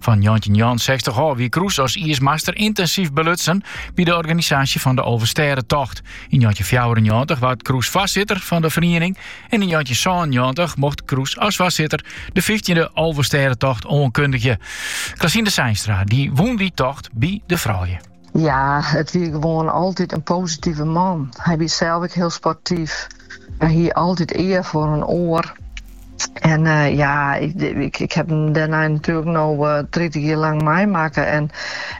Fan njoggentjinnjoggenensechstich ôf wie Kroes as iismaster yntinsyf belutsen by de organisaasje fan de Alvestêdetocht. Yn njoggentjinfjouwerennjoggentich waard Kroes foarsitter fan de feriening en yn njoggentjinsânennjoggentich mocht Kroes as foarsitter de fyftjinde Alvestêdetocht oankundigje. Klasina Seinstra, dy wûn dy tocht by de froulju. Ja, it wie gewoan altyd in positive man. Hy wie sels ek hiel sportyf. Hy hie altyd ear foar in oar. En eh, ja, ik, ik, ik ha him dêrnei natuerlik noch uh, eh, 30 jier lang meimakke. En,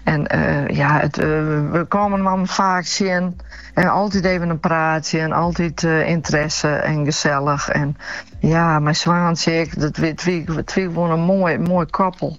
en eh, ja, it, eh, we kamen him faak tsjin. En altyd even in praatsje en altyd ynteresse en gesellich. En ja, mei Swaantsje, dat, it wie gewoan in moai, moai koppel.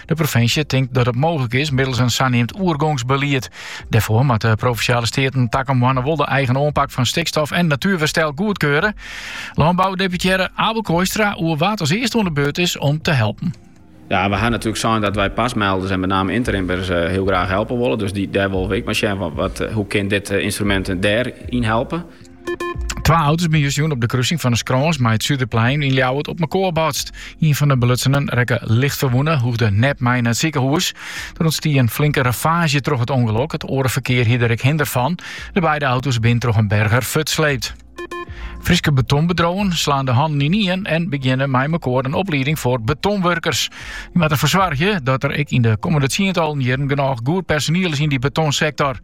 De provinsje tinkt dat it mooglik is middels in saneamd oergongsbelied. Dêrfoar moatte de provinsjale steaten takom moanne wol de eigen oanpak fan stikstof en natuerwerstel goedkeure. Lânboudeputearre Abel Kooistra oer wa't as earste oan de beurt is om te helpen. Ja, we ha natuerlik sein dat wy PAS-melders en met name interimmers eh, hiel graach helpe wolle. Dus dy, dêr wolle we ek mar sjen fan wat, eh, hoe kin dit eh, ynstrumint dêryn helpe. Twa auto's binne justerjûn op de kruising fan de Skrâns mei it Suderplein yn Ljouwert op mekoar botst. Ien fan de belutsenen rekke licht ferwûne en hoegde net mei nei it sikehûs. Der ûntstie in flinke ravaazje troch it ûngelok. It oare ferkear hie der ek hinder fan. De beide auto's binne troch in berger fuortsleept. Fryske betonbedriuwen slaan de hannen ynien en begjinne mei mekoar in oplieding foar betonwurkers. Dy moat derfoar soargje dat der ek yn de kommende tsientallen jierren genôch goed personiel is yn dy betonsektor.